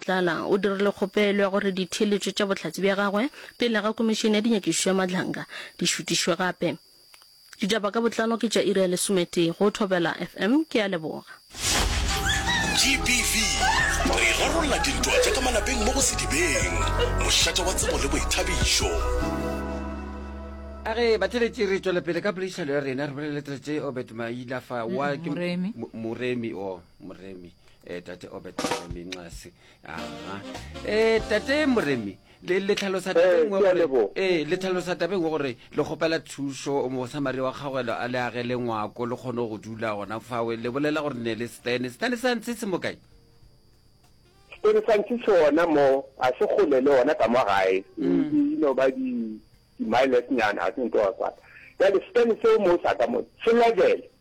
Matlala o dirile kgopelo ya gore ditheeletšo tša bohlatse bja gagwe pele ga Komišene ya Dinyakišišo ya Madlanga di šutišwe gape. Ditaba ka botlalo ke tša iri ya lesometee go Thobela FM. Ke a leboga. GBV, re rarolla dintwa tša ka malapeng mo go Sedibeng, mošate wa tsebo le boithabišo. A re batheletši re tšwela pele ka poledišano ya rena re bolele tletše Obert Mailafa wa ke Moremi. Mo- Moremi o Moremi e tate obet moremi nxase aa e tate moremi le le tlhalosa tabeng wa gore ee le tlhalosa tabeng wa gore le kgopela thušo mosamari wa kgagwelo a le agele ngwako le kgone go dula gona fawe le bolela gore ne le stene stene sa ntse se mo kae stene sa ntse se ona mo a se gole le ona ka mo gae e no ba di di miles nyana a tsentoa kwa ya le stene se mo sa ka mo se level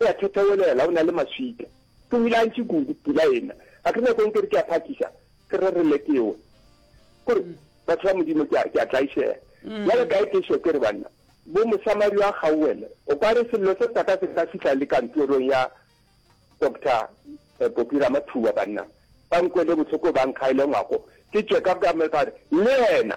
O a thethewelela, o na le maswika. Ke o ile a ntši kudu, pula e na. Ga ke nyakong ke re ke a phakiša, ke re re lekewe. Kore, batho ba Modimo, ke a tlaišega. Bjale ka ekeše ke re, banna, bo Mosamaria a kgaoele, o ka re sello se sa ka se ka fihla le kantorong ya Doctor Popi Ramathuba, banna ba nkwele bohloko ba nkgaele ngwako, ke tšeka ka me ka re, le yena,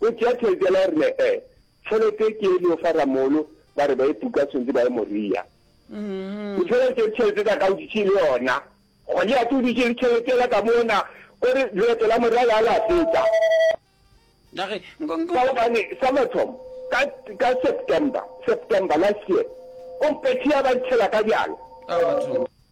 O tšea tšhelete yela o re ne e. Tšhelete ke e leo fa Ramolo ba re ba e puka tshwentse ba ye Moria. O tšhela tše tšhelete tsa ka o ditše le yona. Goliate o ditše le tšhelete yela ka mona o re leeto la Moria la la feta. Dage nko nko. Ka gobane sa mathomo ka ka September September last year o mpethe ya ba ntšhela ka bjala. Ka batho.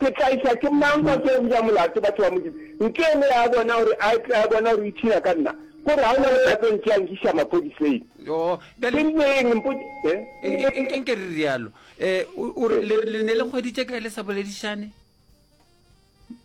Ke tla iša ke mang kwa ke go ja molato batho ba Modimo? Nke le ya bona gore a tle a bona gore o ipshina ka nna, gore ga o na le ka tlo ntšea nkiša mapodiseng. Yoo, bjale, Ke rile eng? Mpod. Eh? e- e- e- nke re rialo. Eh, o, o re le, le ne le hweditše kae le sa boledišane?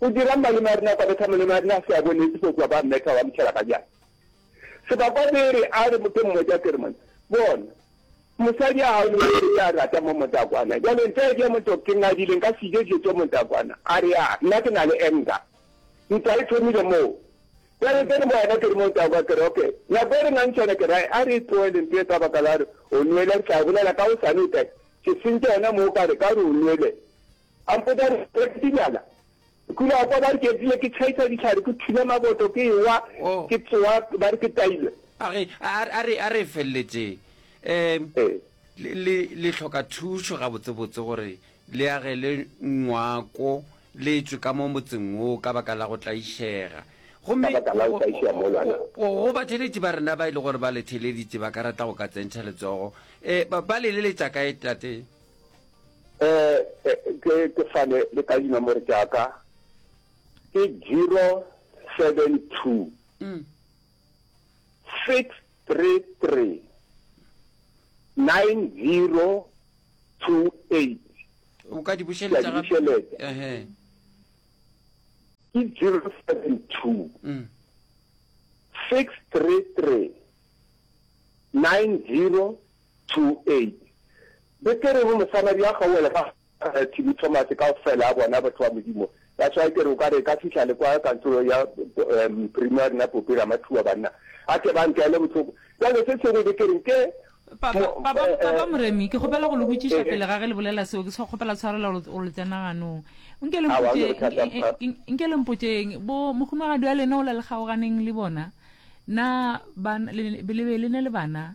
O dira'ng malome a rena kwa betha malome a rena a se a bonetše fo kua ba mmetha wa motšhela ka jana sebakwa bere a re ke mmotša ke re mone bona mosadi a hao le mosadi ya rata mo motakwana jale ntle ke motho ke ngadile nka sije dilo tše motakwana a re a nna ke na le enga ntwa e thomile moo jale ke re mo wena ke re mo takwa ke re okay nako e re nang tšhone ke ra a re tloele ntwe ka baka la re o nwele re tla bolela ka o sane o tla ke sentše yona moo ka re ka re o nwele A mpotša a re, Re ke dibjala? Ke ile ka kwa ba re ke epile, ke tšhaitša dihlare, ke thula maboto, ke ewa, ke tsowa ba re ke tailwe. A re, A re, a re feleletše um le, le, le hloka thušo gabotsebotse gore le agele ngwako le tšwe ka mo motseng wo ka baka la go tlaišega. Gomme go, go batheletši ba rena ba e le gore ba le theleditše ba ka rata go ka tsentšha letsogo. Um ba, ba le leletša kae, Tate? Eh, ke ke fane le ka dinomoro tša ka ke zero seven two mm. six three three nine zero two eight o ka di bušeletša gape bušeletša ehe ke zero seven two mm. six three three nine zero 2:8. Betere go mosamadi a kgaoele ga Gareth le Thomas kaofela a bona batho ba Modimo. That's why ke re o ka re ka fihla le kwa kantorong ya Primary nna Pope Ramathuwa banna a tle ba ntlele bohloko. Bjale se sengwe be ke reng ke. Papa, Papa, Papa Moremi, ke kgopela go le botšiša pele ga ge le bolela seo, ke sa kgopela tshwarelo gore gore le tsena ganong. Nke le Aowa, mpotše, ga go na bothata, Papa. nke- nke- nke le mpotšeng, bo mohumagadi wa lena o la le kgaoganeng le bona, na ban, le, le be le ne le bana?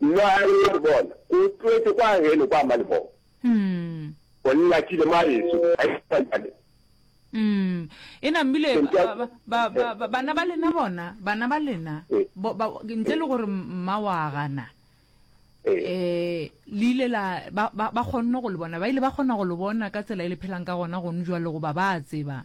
Nna a re, Wa bona, o tloetše kwa geno kwa malebong. O nnyakile mwa geso, ga e sa bjale. Eena, mmile ba, ba, ba, ba, ba, bana ba lena bona, bana ba lena, bo, ba, ntle le gore mma wa gana, um le ile la, ba, ba, ba kgonne go le bona, ba ile ba kgona go le bona ka tsela e le phelang ka gona gone bjale, goba ba a tseba.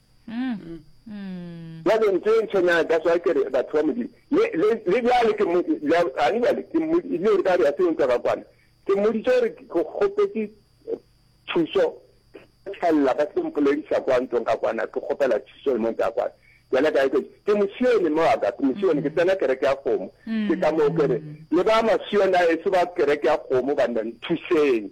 bjale ntho e ntshwenyang that's why ke re batho ba modimo le bjale ke gane bjale ke mmodile gore ka re a seo ntwa ka kwana ke mmoditse gore ke kgopetse thuso tšhelela ba se mpolediša kwa ntlong ka kwana ke kgopela thuso le mo ntwa kwana yena ka ke ke mosione mo wa ka ke mosione ke tsena kereke ya kgomo ke ka moo kere le ba masione a eso ba kereke ya kgomo banna nthuseng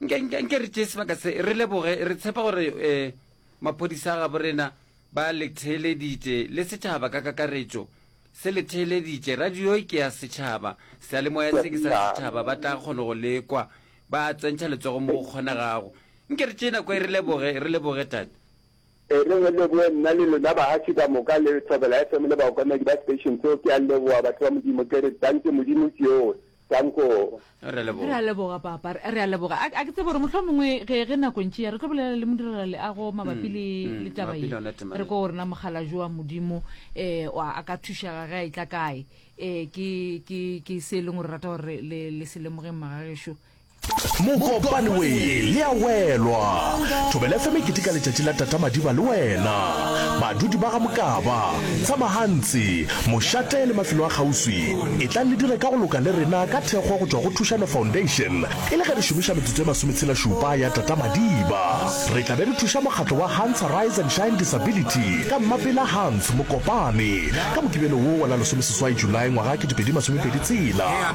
nke re tšee sebaka se re leboge re tshepa gore um maphodisa a gabo rena ba letheeleditše le setšhaba ka kakaretšo se letheeleditše radio ke ya setšhaba sealemoya se ke sa setšhaba ba tla kgona go lekwa ba tsentšha letsogo mo go kgonegago nke re tšee nako e re leboge re leboge tate E re re leboe nna le lona bahafi ka moka le Thobela FM le baokamedi ba station so ke a leboa batho ba Modimo ke re danke Modimo ke yo dankoo. Re a leboga. Re a leboga papa. Re a leboga. A ke tsebe gore mohlomongwe ge ge nako ntši ya re tlo bolela le modirela leago mabapi le le taba ye. Re ko gore na mogala jo wa Modimo um a ka thušega ge a itla kae. Um ke ke ke se e leng gore rata gore le le se lemogeng magagešo. Mokopane we le a welwa. Thobela FM e keteka letšatši la Tata Madiba le wena. Badudi ba ga Mokaba, Tsamahantsi, Mošate le mafelo a kgauswi, etlang le dire ka go loka le rena ka thekgo go tšwa go Thušano Foundation e le ge re šomiša metsotso e masometshelašupa ya Tata Madiba. Re tla be re thuša mokgatlo wa Hans Arise and Shine Disability ka Mmapela Hans Mokopane ka Mokibelo wo wa la lesomeseswai Julae ngwaga kete pedi masomepedi tshela.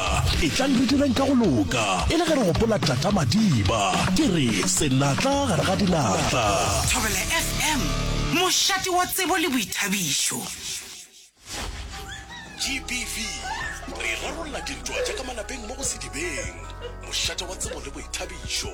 Madiba. Etlang re direng ka go loka e le ge re gopola Tata Madiba. Ke re, Senatla gare ga dinatla. Thobela FM, mošate wa tsebo le boithabišo. GBV, re rarolla dintwa tša ka malapeng mo go Sedibeng. Mošate wa tsebo le boithabišo.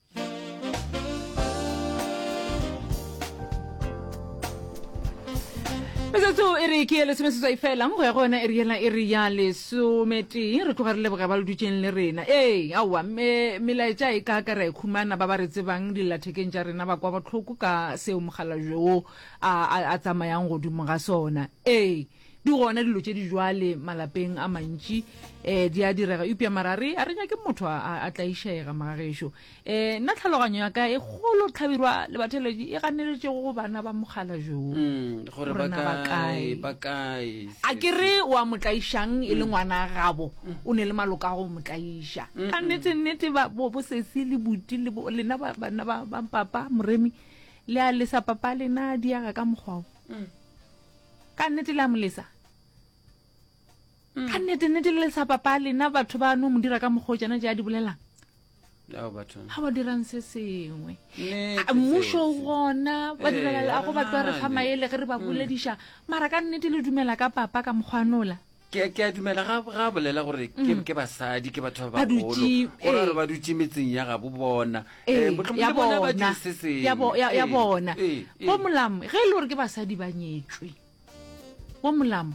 metsotso e re ke ye lesomeseswai fela go ya go yona e re yela e re ya lesometee re tloga re leboge ba le dutseng le rena ee aowa melaetša e ka ka ra e khumana ba ba re tsebang dillathekeng tša rena ba kwa botlhoko ka seo mogala joo a tsamayang godimo ga sona ee Di gona dilo tše di jwale malapeng a mantši, e, di a direga, eupša mara re, a re nyake motho a, a, a tlaišega, magagešo. E, nna tlhaloganyo ya ka e kgolo tlhabirwa le batheletši e ganeletšego go bana ba mogala jo, Mm, gore gore ba na ba kae, kae. ba kae. A sesi. ke re o a mo tlaišang e le ngwana gabo, o ne le maloka a go mo tlaiša. Ka nnete, nnete, ba, bo, bo sesi le buti le bo, lena ba, bana ba, ba papa, Moremi, le a lesa papa lena diega ka mokgwa o. ka nnete le a molesa ka nnete nnete le lesa papa lena batho ba no mo dira ka mokgwa o tsena ja di bolelang Ao batho. ga ba dirang se sengwe Nnete A, mmušo o seo. gona ba direla a go batlo re fa Ee, maele ge re ba bolediša mara ka nnete le dumela ka papa ka mokgwanola Ke, ke a dumela ga, ga a bolela gore ke, ke basadi, ke batho ba Mm. Ba dutše, bagolo. Go ra ee. gore ba dutše metseng ya gabo bona. Ee, Eh, mohlomong ya le bona ba bona, dutše se sengwe. ya bo- ya- ya Ee, bona. ee, ee. Bo Molamo, ge e le gore ke basadi ba nyetšwe bo Molamo,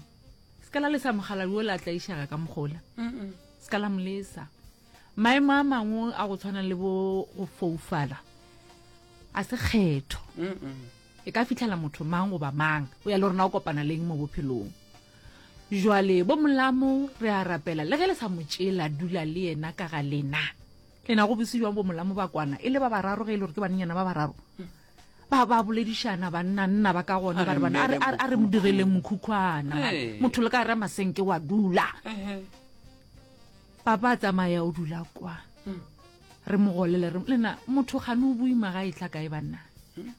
se ka la lesa mogaladi o la tlaišaga ka mogola Mm-mm. se ka la molesa maemo a mangwe a go tshwana le bo go foufala a se kgetho Mm-mm. e ka fitlhela motho mang goba mang o ya le rona o kopana leng mo bophelong Jwale, bomolamo, re a rapela, le ge le sa mo tšeela, dula le yena ka ga lena. Le na go bose jwang bomolamo ba kwana, e le ba bararo ge e le gore ke bananyana ba bararo? ba ba boledišana banna nna ba ka gona ba re bana a re mo direleng mokhukhwana motho le ka re masenke wa dula papa a tsamaya o dula kwa hmm. re mo golele re lena motho gane o boima ga e tla kae banna hmm?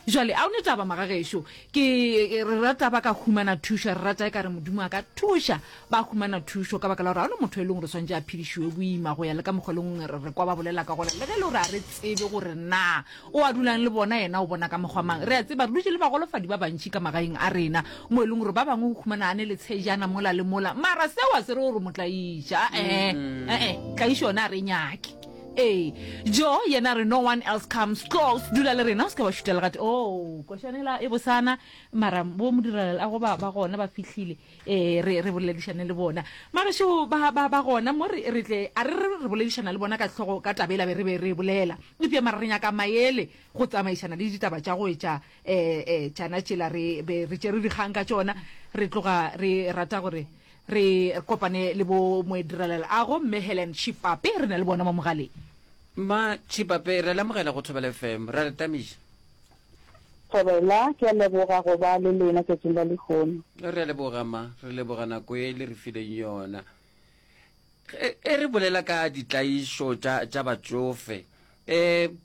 Jwale, a o ne taba, magagešo. Ke, re rata ba ka humana thušo, re rata e ka re Modimo a ka thuša, ba humana thušo, ka baka la gore ga no motho e leng gore swantše a phedišiwe boima, go ya le ka mokgwa le ngwe re kwa ba bolela ka gona, le ge le gore a re tsebe gore na o a dulang le bona, yena o bona ka mokgwa mang. Re a tseba, re dutše le bagolofadi ba bantši ka magaeng a rena, mo e leng gore ba bangwe o humana a ne le tshejana mola le mola, mara seo a se re gore mo tlaiša, a-e, a-e, tlaišo yona a re e nyake. Ee, Joe yena a re no one else comes close, dula le rena o se ke wa šuta legate. Oo, košana ela e bosana, mara bo modirelaleago ba ba gona ba fihlile, ee, re re boledišane le bona. Magešu ba ba ba gona mo, re re tle a re re re boledišana le bona ka hlogo ka taba ela be re be re e bolela. Eupša mara re nyaka maele go tsamaišana le ditaba tša go etša eh eh tšana tšela re be re tšere dikgang ka tšona re tloga re rata gore re kopane le bo moedirelela ago mme helen chipape re na le bona mo mogaleng ma chipape re lamogela go thobela fm ra re tamiša thobela ke a leboga go ba le lena tšatšing la lehono re a leboga ma re leboga nako e le re fileng yona e, e re bolela ka ditlaišo tša batšofe um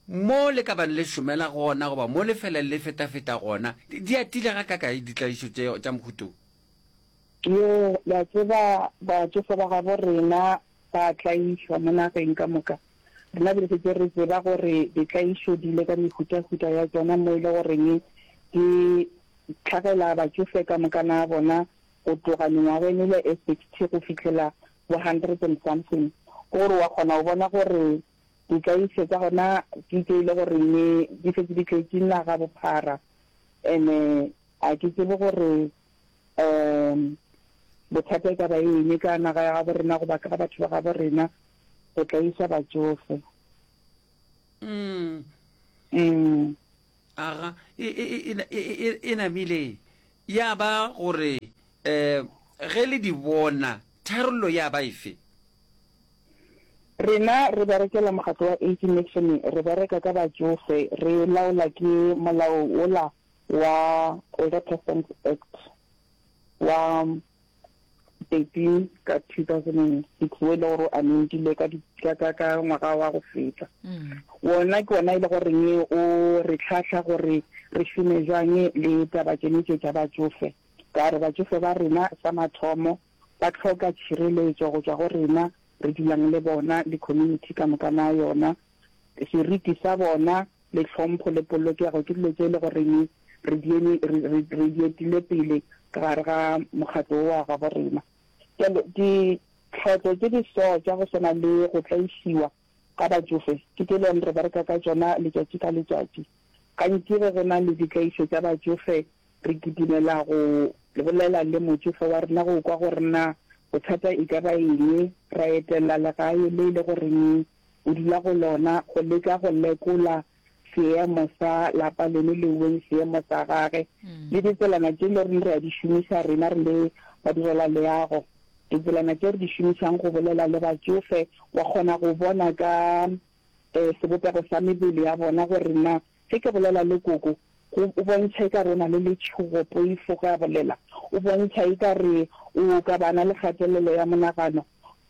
Mo le ka bang le šomela gona goba mo le fela le fetafeta gona, di atile gakakae ditlaišo tše tša mohuto wo? Yo, le a tseba, batšofe ba gabo rena ba a tlaišwa mo nageng ka moka. Rena be re šetše re tseba gore ditlaišo di ile ka mehutahuta ya tšona mo e le goreng di hlagela batšofe ka mokana a bona go tloga mengwageng e le e sixty go fihlela bo hundred and something. Ke gore wa kgona go bona gore Ditlaišo tša gona di tšo e le gore ne di šetše di tletše naga bophara and-e ga ke tsebe gore um bothata e ka ba eng ka naga ya gabo rena goba ka batho ba gabo rena go tlaiša batšofe. Mm. Mm. aga e, e, e, e, e, e, e namile ya ba gore um ge le di bona tharollo ya ba efe Rena re berekela mokgatlo wa Age Nation, re bereka ka batšofe, re laola ke molao wola wa Older Persons Act wa 13 ka 2006 wo e le gore o amendilwe ka ngwaga wa go feta wona ke ona e le goreng o re tlhahla gore re šome jwang le taba tsene tše tša batsofe ka gore batsofe ba rena sa mathomo ba tlhoka tšhireletso go tswa go rena re dulang le bona le community ka moka na yona seriti sa bona le tlhompho le polokego ke dilo tše e le goreng re di eme, re, re, re di etile pele ka gare ga mokgatlo wo wa gabo rena. Bjalo, ditlhotlo tše di so tša go swana le go tlaišiwa ga batšofe ke tše e le goreng re bereka ka tšona letšatši ka letšatši. Gantši ge go na le ditlaišo tša batšofe re kitimela go bolela le motšofe wa rena go kwa gore na bothata e ka ba eng, ra etella legae le e le goreng o dula go lona go leka go lekola seemo sa lapa leno le weng seemo sa gage le ditselana tše le reng re a di šomiša rena re le ba direla leago ditselana tše re di šomišang go bolela le batsofe wa kgona go bona ka um sebopego sa mebele ya bona gore na ge ke bolela le koko go o bontšha e ka re o na le letšhogo poifo ge a bolela o bontšha e ka re o ka bana le kgatelelo ya monagano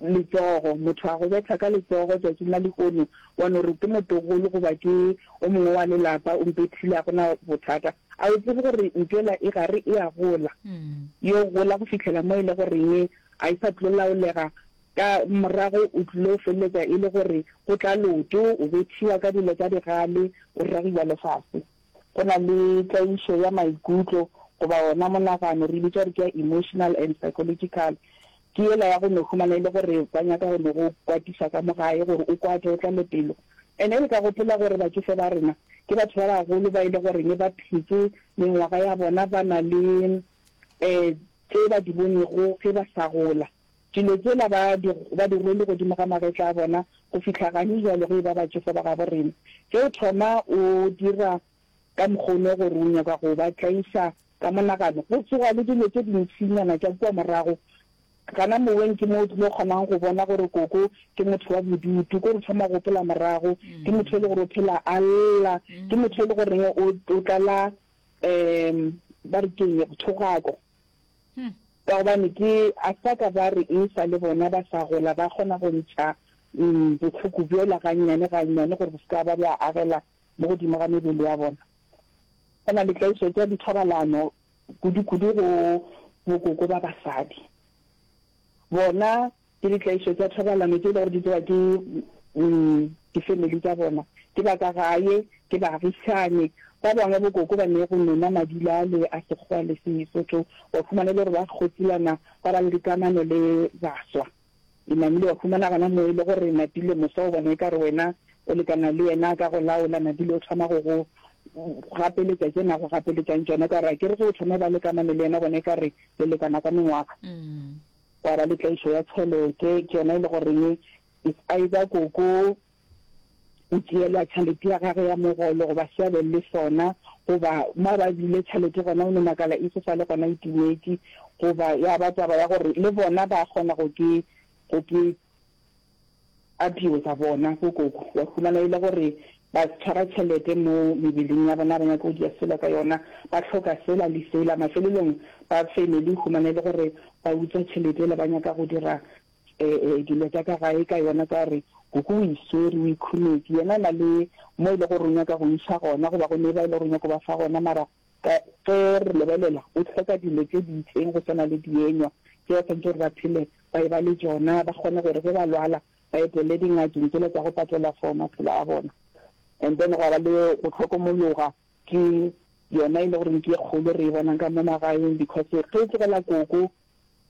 letsogo, motho a go betha ka letsogo tšatšing la lehono, wa no re ke motogolo goba ke o mongwe wa lelapa o mpethile, ga go na bothata. A o tsebe gore ntšola e gare e a gola, e yo gola go fihlela mo e le goreng ga e sa tlo laolega, ka morago o tlilo feleletša e le gore go tla loto, o bethiwa ka dilo tša digale, o ragiwa lefase. Go na le tlaišo ya maikutlo goba wona monagano, re bitša gore ke ya emotional and psychological. Ke yela ya go no humana e le gore ba nyaka go no go kwatisa ka mo gae gore o kwate, o tlale pelo. And e le ka gopola gore batšofe ba rena ke batho ba bagolo ba e le goreng ba phetse mengwaga ya bona ba na le um tse ba di bonego ge ba sa gola. Dilo tsela ba di, ba di rwele godimo ga magetla a bona go fihla gane jwale go eba batšofo ba gabo rena. Ge o thoma o dira ka mokgono gore o nyaka go ba tlaiša ka monagano, go tsoga le dilo tše dintšinyana tša kua morago. Gana moweng ke mo o tlilo kgonang go bona gore koko ke motho wa bodutu, ke gore o thoma go gopola morago, ke motho e le gore o phela a lla, ke motho e le goreng o, o tlala, um ba re keng, thogako. Hm. Ka gobane ke a sa ka ba re e sa le bona ba sa gola ba kgona go ntšha um bohloko bjola gannyane gannyane gore bo se ka ba bja agela mo godimo ga mebele ya bona. Go na le tlaišo tša dithobalano kudu-kudu go bokoko ba basadi. Bona Ke ditlaišo tša thobalano tše e le gore di tsewa ke difemeli tša bona, ke ba ka gae, ke baagišani ba bangwe. Bokoko ba ne go nona madilale a Sekgowa le Sesotho. Wa humana e le gore ba kgotsilana ba ba le dikamano le baswa. E namile wa humana gona moo e le gore Napile moswa o bona e ka re wena o lekana le yena ka go laola. Napile o thoma go go gapeletša tše na go gapeletšang tšona, o ka re akere ge o thoma o ba le kamano le yena bona e ka re le lekana ka mengwaga. gwa ba le tlaišo ya tšhelete, ke yona e le goreng it's either koko o tšeelwa tšhelete ya gage ya mogolo goba se a be le sona, goba mo ba bile tšhelete gona o no makala e se sa le gona e timetse, goba ya ba taba ya gore le bona ba kgona go ke go ke A tliwe ka bona bo koko wa humana ele gore ba tshwara tšhelete mo mebeleng ya bona ba nyaka go dia selo ka yona ba hloka sela le sela mafelelong ba family humana ele gore ba utswa tšhelete ele ba nyaka go dira dilo tsa ka gae ka yona ka gore koko o iswere o ikhunetše yena na le mo ele gore o nyaka go isa gona goba go neba ele gore o nyaka go ba fa gona mara ka ge re lebelela o hloka dilo tse di itseng go swana le dienywa tse ba santse gore ba phele ba eba le tšona, ba kgone gore ge ba lwala ba etelele dingakeng tšela tša go patela for maphelo a bona. And then gwa ba le go hlokomologa, ke yona e le goreng ke e kgolo re e bonang ka mo magaeng, because ge o tlogela koko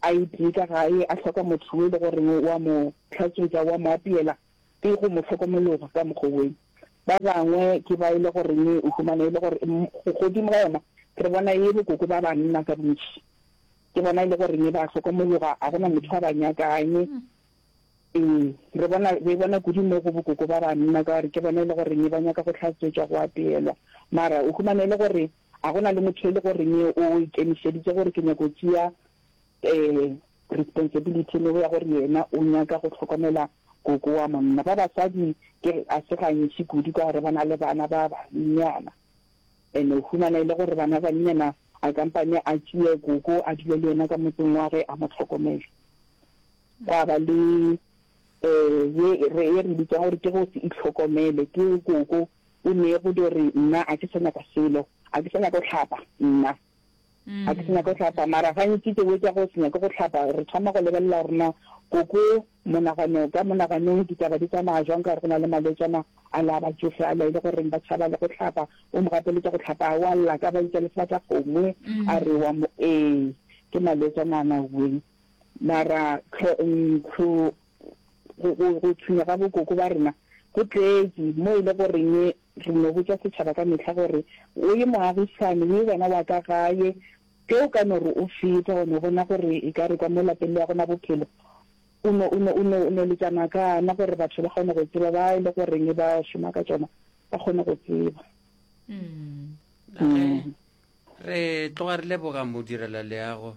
a itee ka gae a hloka motho yo e le goreng o a mo hlatswetša, o a mo apeela, ke go mo hlokomologa ka mokgwa woo. Ba bangwe ke ba e le goreng o humana e le gore godimo ga yona re bona e le koko ba banna ka bontši. Ke bona e le gore ne ba hlokomologa, a gona motho a ba nyakang. Ee, re bona, re bona kudu mo go bokoko ba banna, ka gore ke bona e le gore ne ba nyaka go hlatswetšwa, go apeelwa. Mara o humana e le gore a gona le motho e le gore ne o ikemišeditse gore ke nyako tšea um responsibility le ya gore yena o nyaka go hlokomela koko wa monna. Ba basadi ke a se gantši kudu ka gore ba na le bana ba bannyana. E no humana e le gore bana ba nnyena a kampane a tšee gogo a dule le yena ka motseng wa ge a mo tlhokomele. Gwa ba le ye e re e re bitsang gore ke go se itlhokomele. Ke gogo o ne go di re nna a ke sa nyaka selo, a ke sa nyaka go hlapa nna. Ga ke se nyake go hlapa, mara gantši tse bo tša go se nyake go hlapa re thoma go lebelela gore na koko monagano ka monaganong ditaba di tsamaya jwang ka gore go na le malwetšana a la batšofe a la e le goreng ba tšhaba le go hlapa. O mo gapeletša go hlapa a wa lla ka ba itša lefata kgomo a re wa mo ee ke malwetšana a na weng mara tlho ntlo go, go, go tshwinya ga bokoko ba rena go tletše, mo e le goreng re no botša setšhaba ka mehla gore, O ye moagisane, o ye wena wa ka gae. Ge o ka no re o feta, wa no bona gore e ka re kwa mo lapeng le ya gona bophelo, o no, o no, o no, o no letša makana gore batho ba kgone go tseba, ba e le goreng ba šoma ka tšona ba kgone go tseba. Re tloga re leboga modirela leago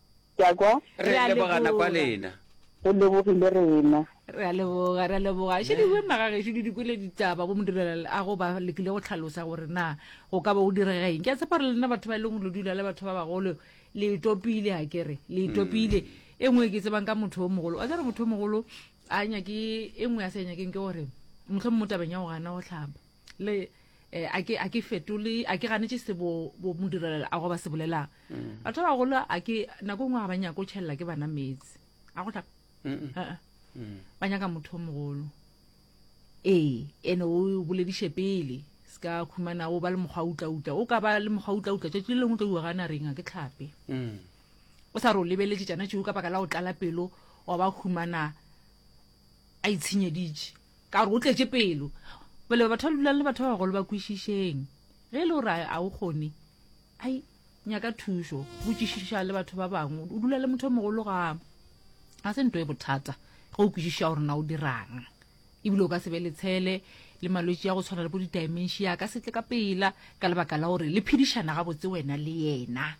Ke a kwa. Re a leboga nako ya lena. Re lebogile rena. Re a leboga, re a leboga. Še di wema ga gešo di dikwele ditaba bo modirelal a go ba lekile go tlhalosa gore na go ka ba go direga eng. Ke a tshepa gore lena batho ba e leng lo dula le batho ba bagolo le itopile a kere le itopile. E nngwe e ke tsebang ka motho o mogolo, wa tseba motho o mogolo a nyake e nngwe a sa e nyakeng ke gore mohlomong mo tabeng ya go gana go hlaba. le eh, a ke a ke fetole a ke ganetse se bo bo modirela a go ba se bolelang mm. batho ba bagolo a ke nako e nngwe ga ba nyako o tšhelela ke bana metsi a go tla mm. ba nyaka motho o mogolo ee ene o bolediše pele se ka khumana o ba le mokgwa utlautla o ka ba le mokgwa utlautla tšatši le lengwe tlo uwa gana reng a ke tlhape mm. o sa re o lebeletse tšana tšeo ka baka la go tlala pelo wa ba khumana a itshenyeditše Ka gore o tletše pelo. Pele ba batho ba dulang le batho ba bagolo ba kwešišeng. Ge e le gore a o kgone, ai, nyaka thušo, botšišiša le batho ba bangwe. O dula le motho o mogolo ga ga se nto e bothata ge o kwešiša gore na o dirang. Ebile o ka se be le tshele le malwetši ya go tshwana le bo di-dimentia ka setle ka pela ka lebaka la gore le phedišana gabotse wena le yena.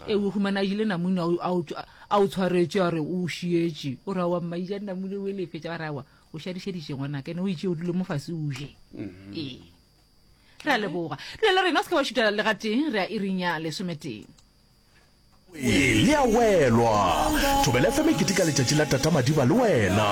e o humana jile namune a o tshwaretše a re o šietše o ra wa mmaija namune o elefetša ba rawa o šadišeditše ngwana kene o itše o dule mo fase o je mm-hmm. ee re a leboga dula le rena o se ke wa šutela le gateng re a irinya lesometeng le a welwa thobele fe mekete ka letšatši la tata madiba le wena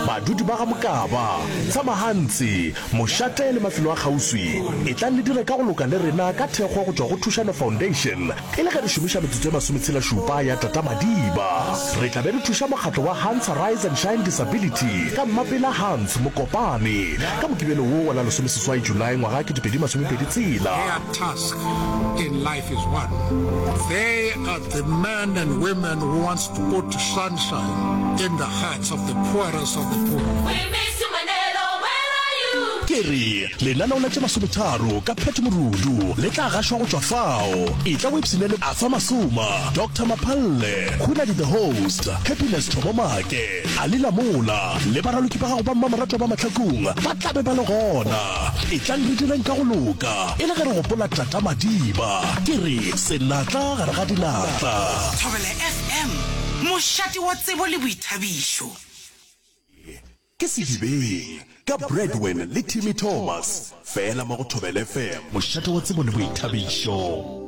badudi ba ga mokaba tsamagantsi Mošate le mafelo a kgauswi, etlang le dire ka go loka le rena ka thekgo go tšwa go Thušano Foundation e le ge re šomiša metsotso e masometshelašupa ya Tata Madiba. Re tla be re thuša mokgatlo wa Hans Arise and Shine Disability ka Mmapela Hans Mokopane ka Mokibelo wo wa la lesomeseswai Julae ngwaga wa kete pedi masomepedi tshela. The man and women who wants to put sunshine in the hearts of the poorest of the poor. We miss you, Manelo. Where are you? Ke re, lenaneo la tše masometharo ka Pat Morudu le tla gašwa go tšwa fao. Etla o ipshinele Arthur Masuma, Doctor Maphalle, Khunadi the Host, Happiness Thomomake, A le la mola le baraloki ba gago ba mmamoratwa ba mahlakong ba tla be ba le gona. Etlang re direng ka go loka e le ge re gopola Tata Madiba. Ke re, Senatla gare ga dinatla. Thobela FM, mošate wa tsebo le boithabišo. Ke Sedibeng ka Bradwin le Timmy Thomas, fela mo go Thobela FM. Mošate wa tsebo le boithabišo.